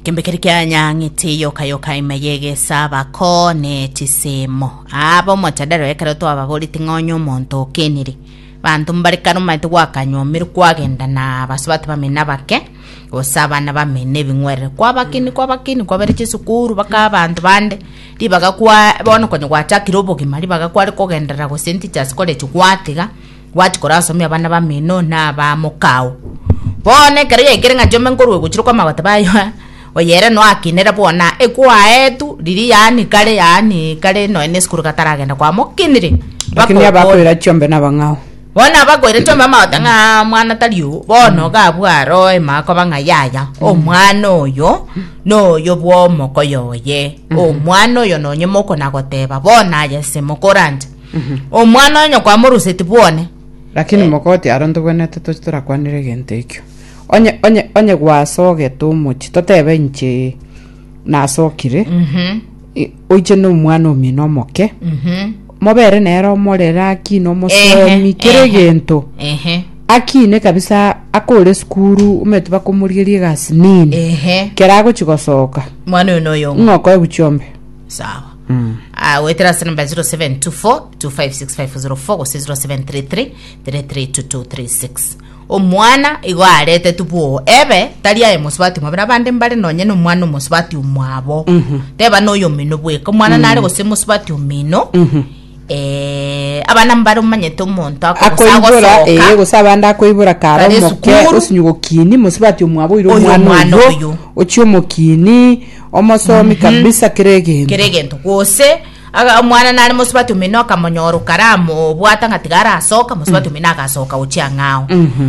Kembekeri kianyang'ete yoka yoka ime yegesa bako ne chisemo abo motadaro ekero twababorete ng'onye omonto okenire banto mbare kare omanyete gwakanyomeru kwagenda na basubati bamene abake gose abana bamene ebing'werere kwabakeni kwabakeni kwabere chisukuru baka abanto bande ribaga kwa bono konya gwachakire obogima ribaga kware kogenderera gose entichas college gwatiga Gwachia korasomia abana bamino na aba mokao. Bono ekero yaikire ng'a chiombe nkorwa ogochire kwa magoteba aye aa, oye ere noakinire buna ekwaetu riria yaani kare yaani kare nonya na esukuru gataragenda kwamokinire. Lakini Bakokora. abakoira chiombe nabang'ao. Bono abakoire chiombe amagote ng'a mwana tari oo, bono iga abwo aroe ime akoba ng'a yaya, omwana oyo, noyo bwa omokoyo oye, omwana oyo nonye mokona goteba bono aye ase mokoranche. Omwana o nyoko amoruseti bwone. Lakini mogoti aro ntobwenete toche torakwanere egento ekio. Onye onye onye gwasogete omochi totebe inche nasokire. Mhm. i- Oiche no mwana omino omoke. Mhm. Mobere nere omorera akine omosomi Ehe, kere ehe. egento. Ehe. Akine kabisa akore sukuru omanyete bakomorigeria egasi nini. Ehe. Kera agochi gosoka. Mwana oyo noyo. Ng'oko eguchiombe. Sawa. Ah, goetera ase namba 0724256504 gose 0733332236 omwana igo arete tubuo ebe tari aye mosubati mwabere abande mbare nonye na omwana omosubati omwabo teba noyo omino bweka omwana nare gose mosubati omino Eh, abana mbare omanyete omonto ako gose akoibora ee agosoka gose abande akoibora kare Kare omoke esukuru. osinyi gokini mosibati omwaboire Oyo omwana omwana oyo oyo. ochie omokini omosomi kabisa kere egento kere egento gose aga- omwana nare mosibati omino akamonyora okaramo obwata ng'a tiga arasoka mosibati omino agasoka gochia ang'ao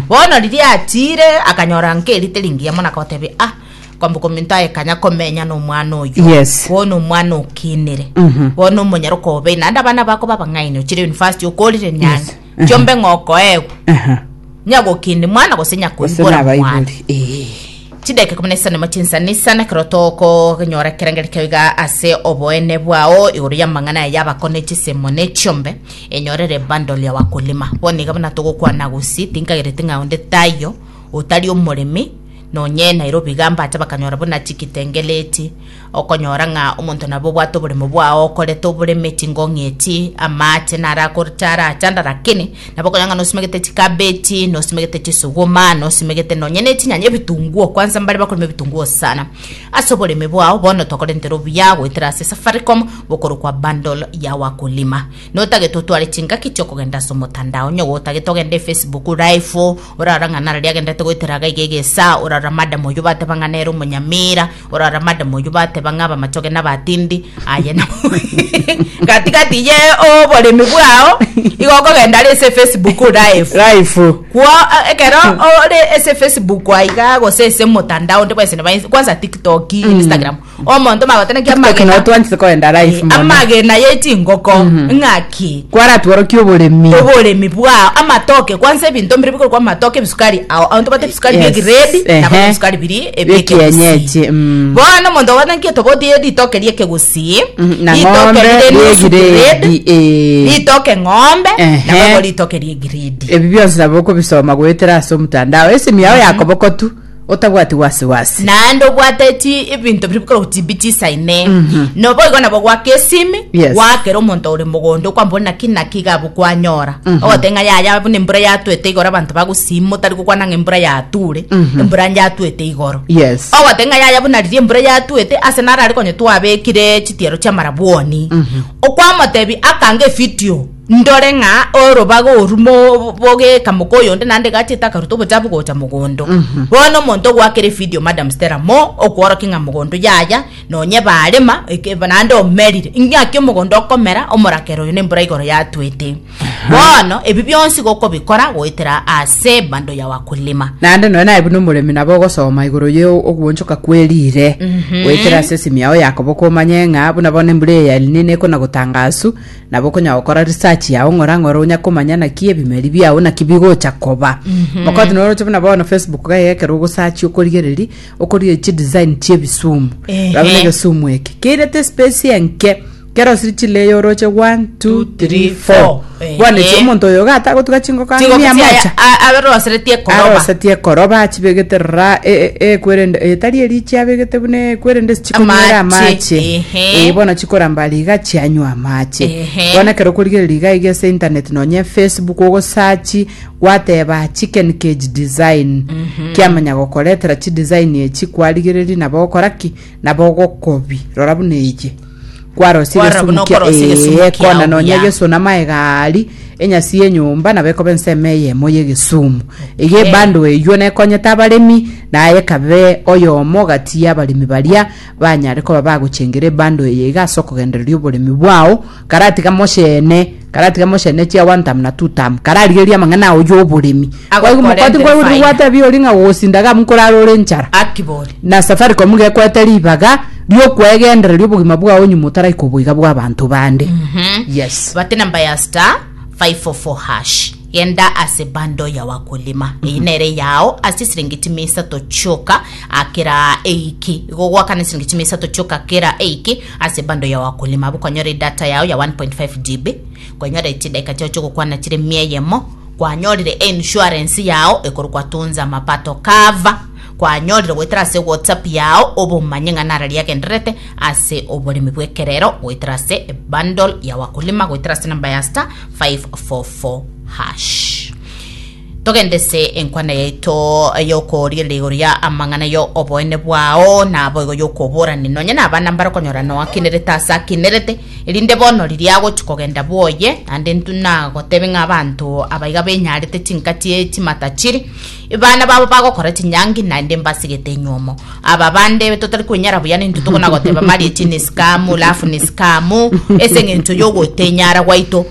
bono riria atire akanyora nkerite ringiya mono akagotebia ah Kwambuka ominto aye kanya komenya nomwana oyo Yes. bono omwana okinire bono omonyara okobe naende abana bako babang'aini ochire university okorire nyange Mhm. chiombe ng'okoegwa Aha. nyagokindi mwana gose Gose nyakoibora mwana nabaibori. Eh. chideke kumi na isanemo chinsanisa nekero tokonyora ekerengeri keo iga ase oboene bwao igoro y'amang'ana aya yabako ne chisemo ne chiombe enyorere bundle ya wakulima bono iga buna togokwana gusii tinkagereti ng'a onde taiyo otari omoremi Nonye Nairobi iga mbacha bakanyora buna chikitengele echi, okonyora ng'a omonto nabo obwate oboremo bwao okorete oboreme chingong'i echi, amaache narakorche are achanda lakini nabo okonyora ng'a nosimegete chikabechi, nosimegete chisuguma, nosimegete nonye ne chinyanya ebitunguo, kwanza mbare bakorema ebitunguo sana. Ase oboreme bwao bono tokorentera obuya goetera ase Safaricom bokorokwa bundle ya wakulima. Notagete otware chingaki chiokogenda ase omotandao, onye gotagete ogende Facebook live, Orara ng'a narari agenderete goetera iga iga egesaa, orara madam oyio bateba ng'a nere omonyamira, orara madam oyio bateba ng'a abamachoge nabatindi, aye na gatigati ye oboremi bwao igo okogenda are ase Facebook live life kwo eh, ekero ore ase facebook aiga gose ase motandao onde bwense nebainse kwanza tiktok instagram Omonto magoteneki Ekero amagena twanchete koenda live eh, mono. amagena yechingoko ng'aki Kwaratworokia oboremi. oboremi bwao amatoke kwanza ebinto mbire bikorokwa amatoke ebisukari ao abanto bate ebisukari bie Yes, grade ehe. nabo ebisukari biri Bie ebie kienyeji, kegusii mm. bono omonto ogotenki etoboti ye ritoke rie kegusii Mhm, na ritoke ng'ombe rire rie nusu grade grade, eh. ritoke ng'ombe Ehe. nabo igo ritoke rie grade Ebi bionsi nabo okobisoma goetera ase omotandao. Esimi yao yakobokotu. otabwati wasiwasi. naende obwate chi ebinto biri bikoroku chimbi chisaine noboigo nabo gwaka esimi Yes. gwakera omonto ore mogondo okwamba ore naki naki iga abwo kwanyora ogote ng'a yaya buna embura yatwete igoro abanto bagusima otari gokwana ng'a embura yature embura yatwete igoro Yes. ogote ng'a yaya buna riria embura yatwete ase naro are konye twabekire chitiaro chi'amarabwoni okwamotebia akanga efidio Ndore ng'a orobaga orumo bogeka moka oyonde naende egachete akaruta obochafu gocha mogondo. Bono omonto ogoakera efidio Madam Stella mo okworokia ng'a mogondo yaya nonye ebarema eke naende omerire. Ing'aki omogondo okomera omorakera oyo nembura igoro yatwete. Bono ebi bionsi gokobikora goetera ase bando ya wakulima. naende nonya naye buna omoremi nabo ogosoma igoro ye oguonchoka kwe riire goetera ase esimi yao yakoboka omanye ng'a buna bono embura eye ya El Nino ekona gotangasu Nabo okonya gokora research yao ng'ora ng'ora onya komanya naki ebimeri biao naki bigocha koba mokoti noroche buna bono facebook gaye ekero ogosachi okorigereria okorigereria chidesign chia ebisumu Ehe. rabe na egesumu eke keirete space enke kerosiri chilayer oroche 1 2 3 4 Ehe. bono echi omonto oyo iga atagotuga chingoko ang'e mia mocha aberoseretie koroba arosetie ekoroba achibegete ra e- e- ekwerende etari erichi abegete buna ekwerende sichikonywera Amache, amache ehe. Eh, bono chikoramba riga chianywa amache Ehe. bono ekero okorigereria riga iga ase internet nonye facebook ogosachi gwateba chicken cage design kiamanya gokoretera chidesign echi kwarigereria nabo ogokora ki nabo ogokobi rora buna eye kwarosire Kwarora buna esumu kia- okorosia egesumu eh, kiao kona nonye buya. egesu na maegari enyasi yenyomba nabo ekoba ensemo eyemo yegesumu iga Okay. ebando eywo nekonyete abaremi naye ekabe oyomo gati yabaremi baria banyare koba bagochengera ebando eye iga ase okogendereria oboremi bwao, karatiga moshene, karatiga moshene chia one term na two term, kararigereria amang'ana ao y'oboremi. Kwaigu mokoti Agokorentera nkwaigure faida. gwatebia ori ng'a gogosinda iga nkorara ore enchara. Akibori. Na Safaricom iga ekwete ribaga ri'okwegendereria obogima bwao nyuma otaraika oboiga bw'abanto bande. Yes. Bate namba ya star 544 hash. Genda ase bundle ya wakulima, eye nere yao ase chisiringi chime isato chioka ah, kera eyiki. Igo ogwakana chisiringi chime isato chioka kera eyiki ase bundle ya wakulima, abwo okonyora edata yao ya 1.5 GB, okonyora chidakika chiao chiogokwana chire mia eyemo, kwanyorire einsurance yao ekorokwa Tunza Mapato Cover, kwanyorire goetera ase WhatsApp yao obomanye ng'a nara riagendererete ase oboremi bw'ekerero goetera ase bundle ya wakulima goetera ase number ya star 544#. Togende ase enkwana yaito y'okorigereria igoro ya amang'ana ya oboene bwao, naboigo y'okoborani nonye nabana mbarokonyora noakenerete ase akenerete, erinde bono riria agochia kogenda bwoye, naende intwe nagotebe ng'a abanto abaiga benyarete chinkati chimata chiri, Abana babo bagokora chinyangi, naende mbasigete nyuomo. Aba bande totari kwenyara buya nintwe tokonagoteba mariachi nesikamu, lafu nesikamu, ase eng'encho y'ogotenyara gwaito.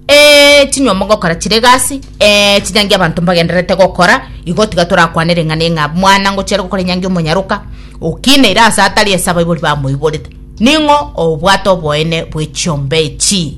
Ee, chinyuomo ngokora chire egasi, ee, chinyangi abanto mbagendererete gokora, igo tiga torakwane ring'ana ing'a mwana ngochia are gokora enyangi omonyaroka, okineire ase atari ase abaibori bamoiborete. Ning'o obwate oboene bwe chiombe echi?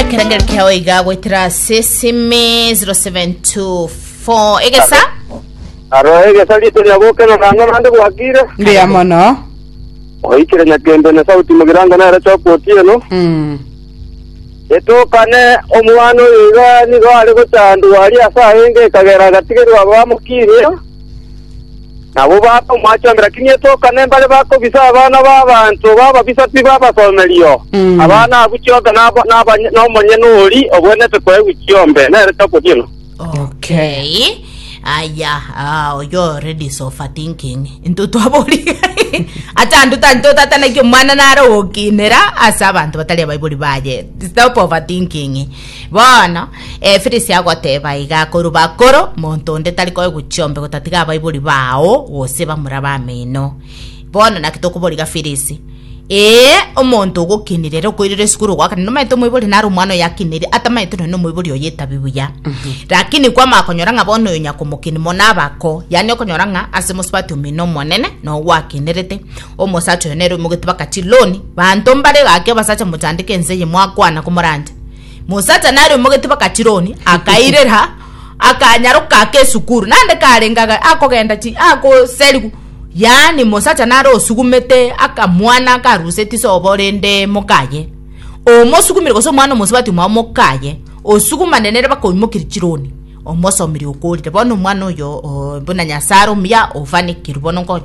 ekerengeri kiao iga goetera ase simi 0724 egesa aro egesa rito riabo okero nang'o nande gwakire mbuya mono oikire nyakembe na sauti mogirango nere choka otieno Mm. etokane omwana oyo iga nigo are gochandwa aria ase aenge ekagera agatigerwa bamokirie Nabo bakamoachongera king'iti oka nembare bakobisa abana b'abanto b'ababisa pi babasomerio. Abana abwo chionka naba nabanye nomonyene oria ogwenerete koegwa chiombe, nere tokotiena. Okay. Aya, ah, oyo already is overthinking. Into twabori. Acha andu tanyu totatanaki omwana nare ogokinera ase abanto batari abaibori baye. Stop overthinking. Bono, Efilisi agoteeba aiga akorwa bakoro, monto onde tari koegwa chiombe gotatiga abaibori bao gose bamura b'ameno. Bono naki tokoboriga Filisi? Ee, omonto ogokinirera okoirera esukuru ogoakana nomanyete omoibori nare omwana oyakiniri atamanyete nonya omoibori oye etabi buya lakini kwamanya konyora ng'a bono oyo nyakomokini mono abako yaani okonyora ng'a ase mosubati omino omonene nogwakinerete omosacha oyo nere omogete baka chiloni banto mbare gaki abasacha mochandeka ense eye mwakwana komoranche Mosachani aria omogete bakachironia, akairera, akanyaroka ake esukuru. Nande karengaga akogenda chi akoserigu. Yaani mosacha nare osugumete akamwana karuseti sobo rende mokaye. Omosugumire gose omwana omosubati mwao mokaye. Osugumane nere bakoimokeria chironi. Omosomirie okorire. Bono omwana oyo buna nyasaro muya ofanikirwe bono nkonye.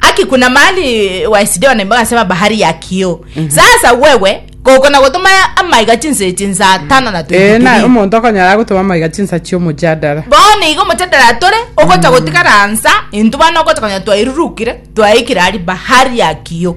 Aki kuna mahali wa Sidoni ambayo anasema bahari ya kioo. Sasa wewe kokona gotuma amaiga chinse chinsa tano na ee na 23. omonto okonyara agotoma amaiga chinsa chi'omojadara Bono igo motedera tore ogocha gotigara nsa intu bana ogocha konya twairurukire twaikire ari bahari ya kiyo.